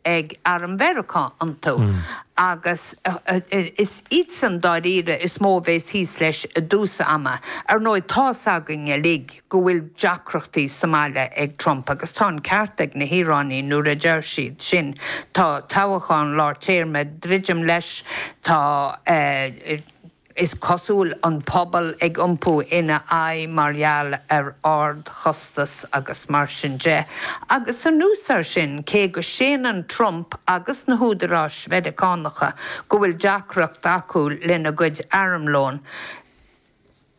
ag arm Mheiriceá iontu, agus is iadsan dáiríre is mó a bheas thíos leis i dtús ama. Ar ndóigh, tá's againn uilig go bhfuil deacrachtaí sa mbaile ag Trump, agus tá an ceart ag na hIaráinigh nuair a deir siad sin, tá toghachán lár téarma ag druidim leis, tá. is cosúil, an pobal ag iompú ina aghaidh mar gheall ar ardchostas agus mar sin de, agus anuas air sin, cé go séanann Trump agus na húdaráis Mheiriceánacha go bhfuil deacracht acu lena gcuid armlóin,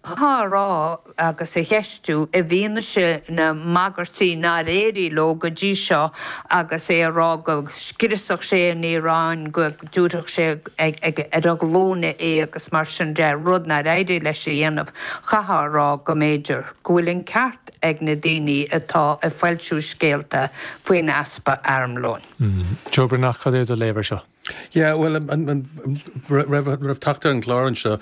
á rá agus a cheistiú, i bhfianaise na mbagairtí nár éirigh leo go dtí seo, agus é a rá go scriosfadh sé an Iaráin, go dtabharfadh sé ar a glúine í agus mar sin de, rud nár éirigh leis a dhéanamh, chaithfeá a rá go mb'fhéidir go bhfuil an ceart ag na daoine atá ag foilsiú scéalta faoin easpa armlóin. Joe Breathnach, cad é do léamh air seo? Yeah, bhuel, roimh theacht ar an gclár anseo,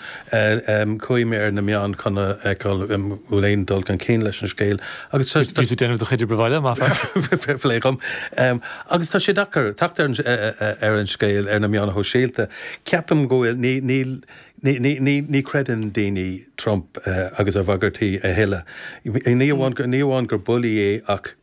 chuaigh mé ar na meáin chun a fheiceáil an bhfuil aon dul chun cinn leis an scéal agus tá. Bhí tú ag déanamh do chuid obair bhaile, maith an fear! Fair play dhom. Agus tá sé deacair teacht ar an scéal ar na meáin shóisialta. Ceapaim go bhfuil, níl, ní chreideann daoine Trump agus a bhagairtí a thuilleadh. Ní amháin gur bulaí é ach.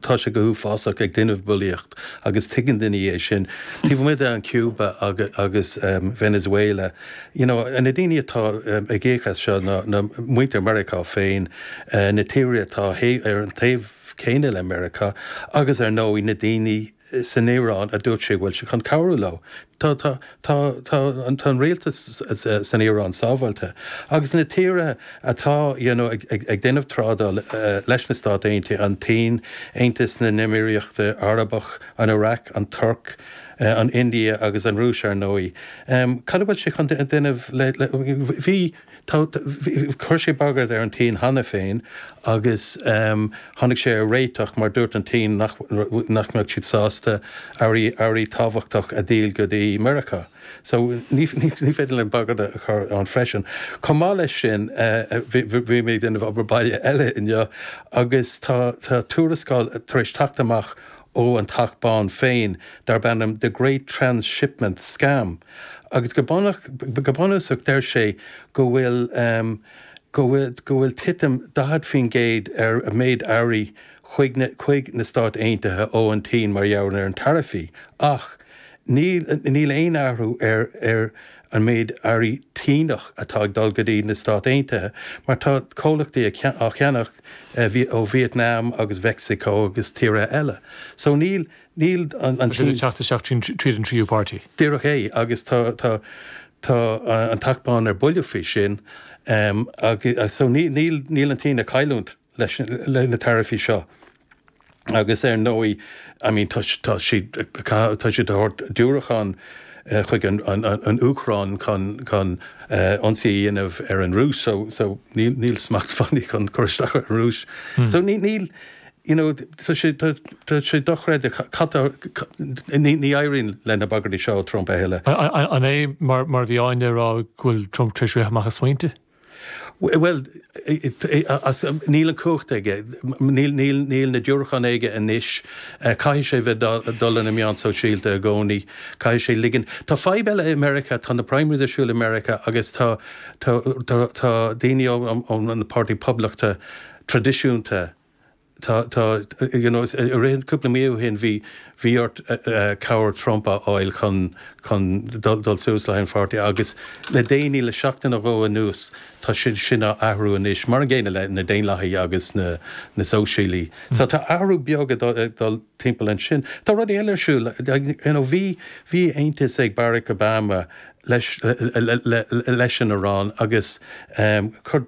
Tá sé go huafásach ag déanamh bulaíocht agus tuigeann daoine é sin. Taobh amuigh de Cuba agus Venezuela, you know, na daoine atá ag íoc as seo ná muintir Mheiriceá féin, na tíortha atá ar an taobh céanna le Meiriceá agus ar ndóigh na daoine, san Iaráin a dúirt sé go bhfuil sé chun cabhrú leo. Tá an rialtas san Iaráin sábháilte agus na tíortha atá ag déanamh trádáil leis, na Stáit Aontaithe, an tSín, Aontas na nÉimíríochta Arabach, an Iraq, an Tuirc, an India agus an Rúis, ar ndóigh. Cad a bhfuil sé chun déanamh le. Chuir sé bagairt ar an tSín cheana féin agus tháinig sé ar réiteach mar dúirt an tSín nach mbeadh siad sásta earraí tábhachtacha a dhíol go dtí Meiriceá. So, ní féidir leis bagairt a chur ann freisin. Chomh maith leis sin, bhí mé ag déanamh obair baile eile inniu agus tá tuarascáil tar éis teacht amach ó An Teach Bán féin darb ainm The Great Transshipment Scam, Agus go bunúsach deir sé go bhfuil, go bhfuil titim 40% ar an méid earraí chuig na Stáit Aontaithe ó an tSín mar gheall ar na taraifí ach níl aon athrú ar an méid earraí Síneach atá ag dul go dtí na Stáit Aontaithe mar tá comhlachtaí á cheannach ó Vietnam agus Mheicsiceo agus tíortha eile. So níl. Níl an Tá siad ag teacht isteach tríd an tríú páirtí. Díreach é, agus tá tá an tAcht bán ar buile faoi sin, so níl níl an tSín ag cailliúint leis na taraifí seo agus ar ndóigh, I mean, tá tá siad ag cath tá siad ag thabhairt diúracán chuig an an Úcráin chun chun ionsaí a dhéanamh ar an Rúis, so so níl níl smacht fiú acu chun cur isteach ar an Rúis. So níl níl you know tá sé, tá sé dochreidte cad tá, ní éiríonn le na bagairtí seo ó Trump a thuilleadh. An é mar a bhí Áine ag rá go bhfuil Trump tar éis rith amach as smaointe? Bhuel, níl an cumhacht aige, níl na diúracháin aige anois, caithfidh sé bheith ag dul ar na meáin shóisialta i gcónaí, caithfidh sé ligean, tá fadhb eile i Meiriceá, tá na primaries ar siúl i Meiriceá agus tá, tá, tá daoine ón bpáirtí Poblachta traidisiúnta, tá, tá, you know, cúpla mí ó shin bhí, bhí ort cabhair Trump a fháil chun, chun dul suas leis an bpáirtí agus le déanaí, le seachtain nó dhó anuas, tá sé sin á athrú anois, mar an gcéanna le na Daonlathaigh agus na, na Sóisialaigh. So tá athrú beag ag dul, ag dul timpeall ansin. Tá rudaí eile ar siúl, you know, bhí, bhí aontas ag Barack Obama leis, le, le, le, leis an Iaráin agus chuir,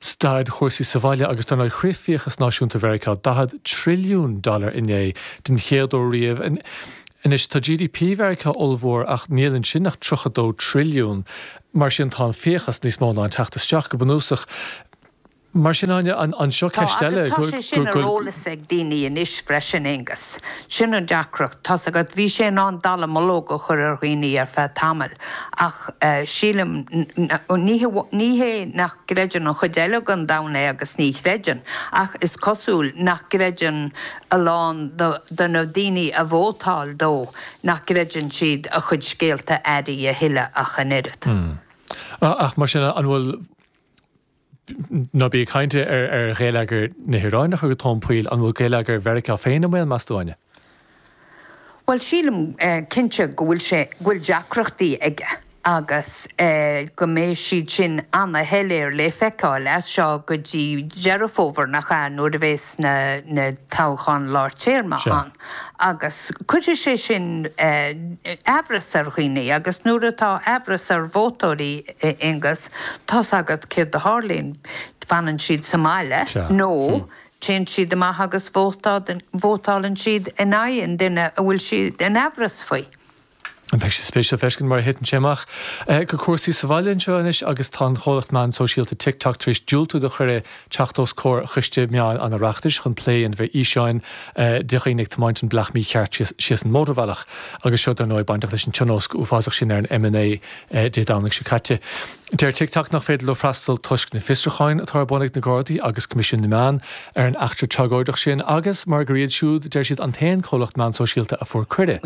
Staid chúrsaí sa bhaile agus dar ndóigh shroich fiachas náisiúnta Mheiriceá 40 trilliún dollar inné, den chéad uair riamh. Anois tá GDP Mheiriceá ollmhór ach níl ansin ach 32 trilliún, mar sin tá an fiachas níos mó ná an teacht isteach, go bunúsach. Mar sin, Áine, anseo Tá, ceist agus eile tá sé sin ar go. eolas ag daoine anois freisin, Aengus. Sin an deacracht, tá's agat, bhí sé in ann dallamullóg a chur ar dhaoine ar feadh tamaill ach eh sílim, ní hé, ní hé nach. gcreideann an chuid eile den domhan é agus ní chreideann, ach is cosúil nach gcreideann a lán de na daoine a vótáil dó, nach gcreideann siad a chuid scéalta áirithe a thuilleadh ach an oiread. Hm. Ach mar sin, an bhfuil. ná bí ag caint ar ghéilleagar na hIaráine a chur go tóin poill, an bhfuil géilleagar Mheiriceá féin i mbaol, meas tú, Áine? Bhuel, sílim, cinnte, go bhfuil sé, go bhfuil deacrachtaí aige agus go mbeidh siad sin ana-shoiléir le feiceáil as seo go dtí Deireadh Fómhair, nach ea, nuair a bheas na, na toghcháin lár téarma ann. Agus cuirfidh sé sin amhras ar dhaoine agus nuair atá amhras ar vótóirí, a Aonghus, tá's agat céard a tharlaíonn, fanann siad sa mbaile nó Téann siad amach agus vótálann siad in aghaidh an duine a bhfuil siad in aimhreas faoi. Bheadh sé spéisiúil a fheiscint mar a thiteann sé amach. Go cúrsaí sa bhaile anseo anois agus tá an chomhlacht meán sóisialta TikTok tar éis diúltú do chuireadh teacht os comhair Choiste Meáin an Oireachtais chun plé a dhéanamh ar fhíseáin de dhaoine ag tiomáint an bealach mícheart síos an mótarbhealach agus seo dar ndóigh bainteach leis an tionóisc uafásach sin ar an M9 Dé Domhnaigh seo caite. Deir TikTok nach féidir leo freastal toisc na bhfiosrucháin atá ar bun ag na Gardaí agus Coimisiún na Meán ar an eachtra tragóideach sin agus mar gur iad siúd, deir siad, an t-aon comhlacht meán sóisialta a fuair cuireadh.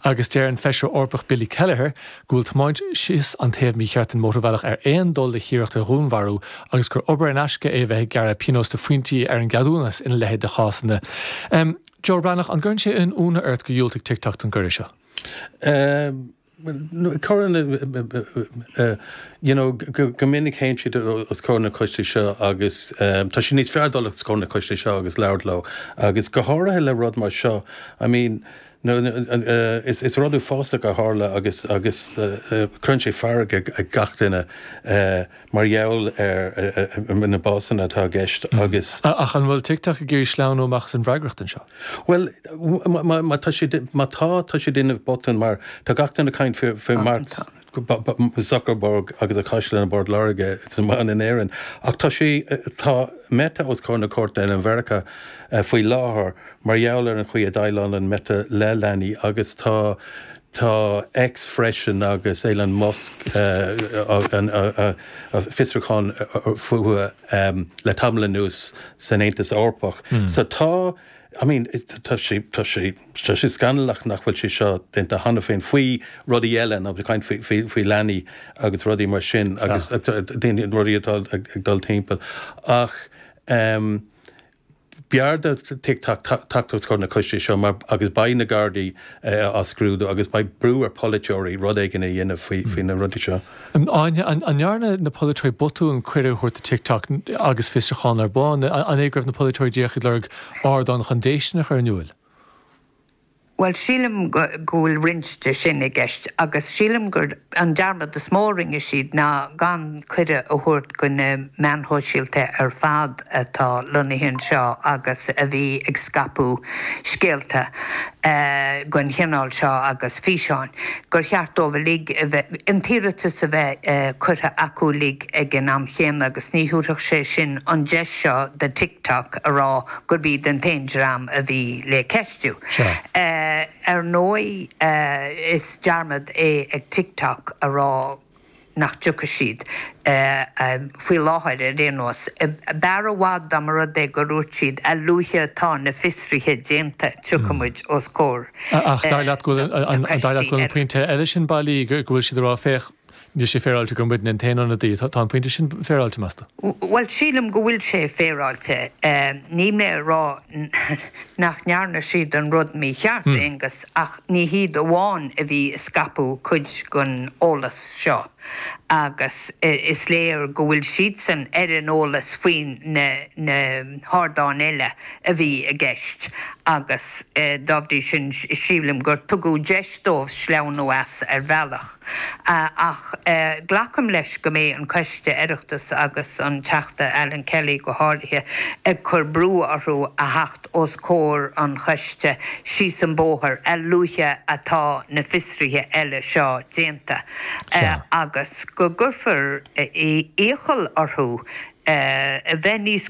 Agus deir an Feisire Eorpach Billy Kelleher go bhfuil tiomáint síos an taobh mícheart den mhótarbhealach ar aon dul le hiarracht ar dhúnmharú agus gur obair in aisce é a bheith ag gearradh pionós de phointí ar an gceadúnas ina leithéid de chásanna. Joe Breathnach, an gcuireann sé aon ionadh ort gur dhiúltaigh TikTok don gcuireadh seo? Cuireann you know go minic théann siad os comhair na gcoistí seo agus tá sé níos fearr dul os comhair na gcoistí seo agus labhairt leo agus go háirithe le rud mar seo I mean is rud uafásach a tharla agus cuireann sé fearg ar gach duine. mar gheall ar na básanna atá i gceist agus. Ach an bhfuil TikTok ag iarraidh sleamhnú amach as an bhfreagracht anseo? Bhuel, má tá siad, má tá, tá siad ag déanamh botún mar tá gach duine ag caint faoi, faoi Mark Zuckerberg agus a chaisleán i bPort Láirge, it's a man in Éirinn, ach tá sé, tá Meta os comhair na cúirte i Meiriceá faoi láthair mar gheall ar an chaoi a ndéileálann Meta le leanaí agus tá, Tá X freisin agus Elon Musk fiosrúchán fúthu le tamall anuas san Aontas Eorpach. So tá, I mean, tá sé, tá sé scannalach nach bhfuil sé seo déanta cheana féin, faoi rudaí eile, ag caint faoi leanaí agus rudaí mar sin agus daoine, rudaí atá ag dul timpeall ach. B'fhearr do TikTok teacht os comhair an choiste seo mar, agus beidh na Gardaí á scrúdú agus beidh brú ar pholaiteoirí rud éigin a dhéanamh faoi na rudaí seo. Áine, An ndearna na polaiteoirí botún cuireadh a thabhairt do TikTok agus fiosrúchán ar bun? An é go raibh na polaiteoirí díreach ag lorg ardán chun déistean a chur in iúil? Bhuel, sílim go bhfuil roinnt de sin i gceist agus sílim gur an dearmad is mó a rinne siad ná gan cuireadh a thabhairt do na meáin shóisialta ar fad atá lonnaithe anseo agus a bhí ag scaipeadh scéalta den chineál seo agus físeáin, gur cheart dóibh uilig a bheith, an t-iarratas a bheith curtha acu uilig ag an am céanna agus ní thabharfadh sé sin an deis seo do TikTok a rá gurb iad an t-aon dream a bhí le ceistiú. Seo. Ar ndóigh, is dearmad é ag TikTok a rá nach dtiocfaidh siad faoi láthair ar aon nós. B'fhearr i bhfad dá mba rud é go dúirt siad, 'A luaithe atá na fiosruithe déanta, tiocfaidh muid os comhair an choiste.' Ach dar leat go bhfuil an pointe eile sin bailí, go bhfuil siad ag rá, 'Féach, Níl sé féaráilte gur muidne an t-aon ionadaí.' Tá an pointe sin féaráilte, meas tú? Bhuel, sílim go bhfuil sé féaráilte. Níl mé ag rá nach ndearna siad an rud mícheart, Aonghus, ach ní hiad amháin a bhí ag scaipeadh cuid den eolas seo agus is léir go bhfuil siadsan ar an eolas faoi na hardáin eile a bhí i gceist agus dá bhrí sin sílim gur tugadh deis dóibh sleamhnú as ar bhealach Ach glacaim leis go mbeidh an coiste Oireachtais agus an Teachta Alan Kelly go háirithe ag cur brú orthu a theacht os comhair an choiste síos an bóthar a luaithe atá na fiosruithe eile seo déanta agus go gcuirfear iachall orthu bheith níos